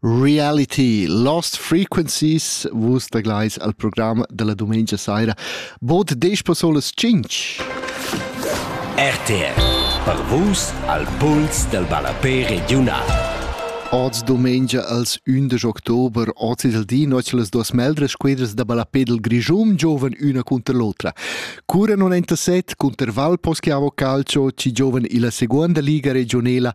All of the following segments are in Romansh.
Reality Lost Frequencies vus taglais al program dalla dumengia saira bod desch personas tschintg. RTL per vus al puls del ballapé regiunal. Oz domengia als 11 october oz il di noc las duas meldras quedras da ballapé del Grischun giovan üna cunter l'otra. Cura 97 cunter Valposchiavo Calcio ci giovan illa seconda liga regionela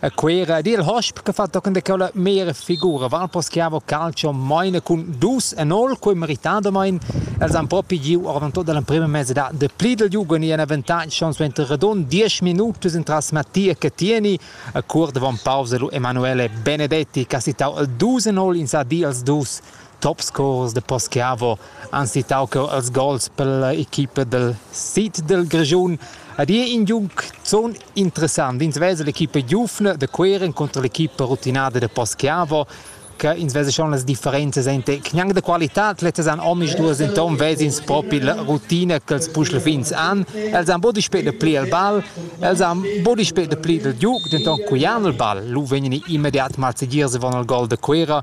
A Cuera ed il hosp che fa tochen da quella mera figura Valpos che ha calcio maina cun dus e nol quei meritadamein els han propi giu ordan tot dall'emprema mesedad de Plidel Jugend e ein avantage schon suenter radund diesch minutus entras Mattia Cattieni a cuort davon pausa lu Emanuele Benedetti che ha sittau el dus e nol in sa di als dus topscorers de Poschiavo han citau cheu als gols per equipa del sid del Grischun ed ei in giunc zun interessant. Ins vesa l'equipa giufna de Cueren contro l'equipa rutinada de Poschiavo che ins vesa schon las differenzas ente gnanc de qualitad letas han omis duas enton vesins propi la rutina che els puschle fins an els han bod spet de pli al ball els han bod spet de pli del giug denton cuian il ball lu vegni immediat mal segier se von al gol de Cuera